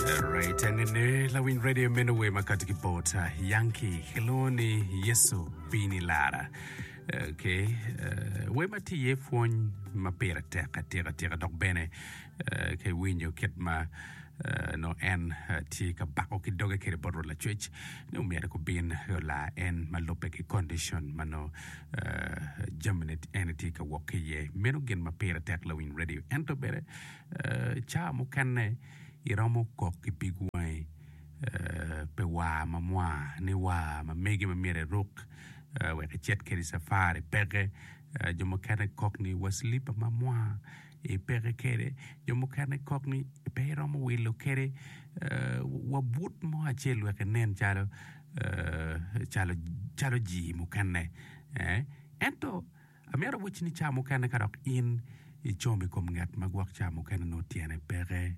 Alright, enene lawiny radio meno wer ma kati ki bot uh, Yankee kilwongo ni Yesu bini lara. Okay, uh, wer ma tye iye pwony ma pire tek atika tika dok bene uh, ke winyo kit ma uh, no en uh, tye ka bako ki doge kede bot Rwot Lacwec ni omyero gubin ola en ma lubbe ki condition ma no uh, jamine en tye ka wok ki iye. Meno gin ma pire tek lawiny radio. Ento bene uh, ca mukene iromo kok ki pig wangi pi war ma mwa ni war ma mege ma myero iruk wek icit kwede i cafari peke jo mukene kok ni wa cilipa ma mwa ipeke kwede jo mukene kok ni pe iromo wilo kwede wa but mo acel wek inen calo calo jii mukene ento Amyero awac ni ca mukene ka dok in icom i kom ngat ma gwok ca mukene nongo tyene peke,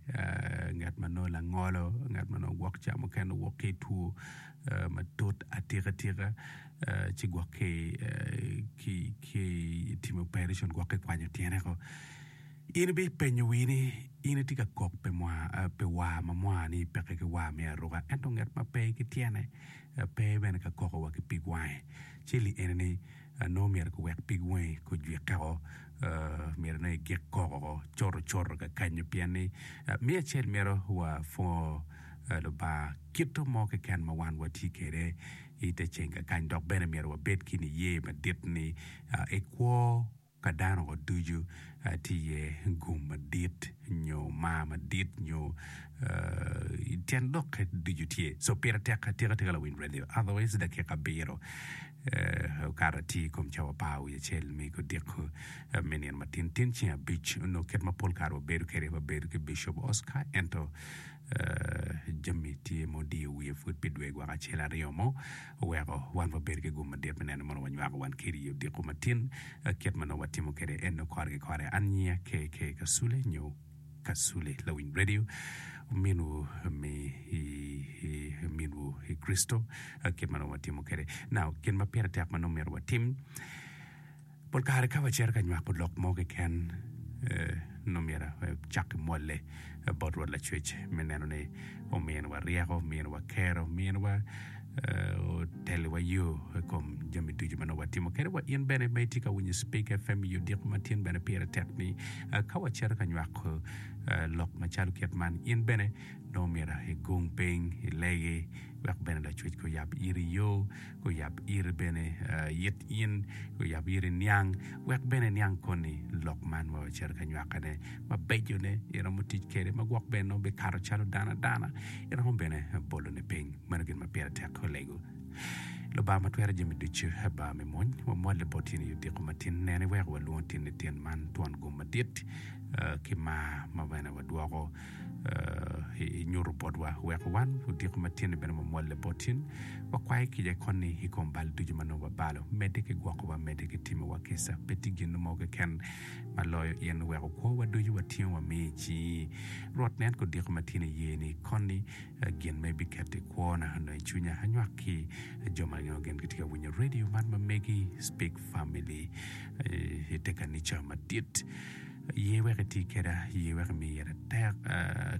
ngat ma nongo langolo, ngat ma nongo gwok ca mukene owok ki i two matut atikatika ci gwok ki ki i timo operation gwok ki i kwanyo tyene ko. In ibipenyo wii ni in itye ka kok pi mwa pi war ma mwani ni peke ki war me aruka ento ngat ma pe ki tyene pe bene ka koko wa ki pig wange ci li eni ni nongo myero kiwek pig wangi gujwikke woko, myero nongo igik koko woko cotocoto kakanyo pien ni me acel myero wapwongo Lubanga kite mo keken ma wan watye kwede i te ceng kakany dok bene myero wabed ki niye madit ni i kwo pa dano ducu tye iye gum madit nyo mar madit nyo tyen dokke ducu tye. So pire tek atika tika lawiny radio otherwise dakika abiro. okato atir i kom cawa apar wiye acel me odiko me nino ma tintin ceng abic onongo kit ma pol kare wabedo kwede ma bedo ki Bicop Oscar ento jami tye ma odiyo wiye pud pi dwe gwaka acel aryo mo oweko wan wabedo ki gum madit me neno mono wanywako wan kiri i odiko matin kit ma nongo watimo kwede en nongo kore ki kore. An nyinga KK Kasule nyo Kasule, lawiny redio, ominwu mi i, i, i minwu i Kricito, ah, kit ma nongo watimo kwede. Now, gin ma pire tek ma nongo myero watim, pol kare ka wacito ka nywako lok mo keken, eh, nongo myero wacak ki mwolle bot Rwot Lacwec me neno ni ominowa ryeko, ominowa kero, ominowa oteliwa yo i kom jami ducu ma nongo watimo kede wa. In bene ma itye ka winyo Spik FM i odiko ma tin bene pire tek ni ka wacito ka nywako lok macalo kit man in bene nongo myero igung piny ilegi wek bene Lacwecki oyab iri yo, oyab iri bene it in, oyab iri niang wek bene iniang koni lok man ma wacito ka nywakone mabecone iromo tic kede ma gwok bene nongo bikato calo dano adana. Iromo bene bolo ni piny. Meno gin ma pire tek olego. Lubanga ma twero jami ducu, Aba me mony, wamolle bot tyeni i odiko matin nene iweko walwongo tyeni tyen man twon gum madit ki mar ma bene wadwoko inyuto botwa. Weko wan odiko ma tyen-ni bene wamolle bot tyen. Wakwayi kica koni i kom bal ducu ma nongo wabalo. Medde ki gwokowa, medde ki timowa kica. Pe tye gin-nu mo keken ma loyo in oweko kwowa ducu watingo wamiyo i cingi. Rwot nen kodiko ma tyen iyeni koni gin ma ibiketo i kwona onongo i cwinya anywak ki jo ma angeyo gin gitye ka winyo radio man ma megi Speak Family i te kanica madit. Ye wek iti keda, ye wek imi ira tek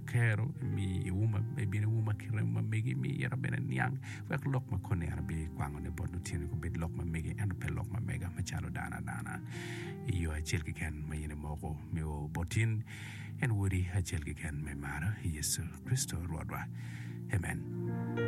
kero, imi iwuma, ibin iwuma ki remo ma megi, imi ira bene niang wek lok ma koni en abikwango ne bot lutini gubed lok ma megi ento pe lok ma mega macalo dano adana. i yo acel keken ma in imoko me o bot in, en Wodi acel keken ma imaro, Yecu Kricito Rwotwa. Amen.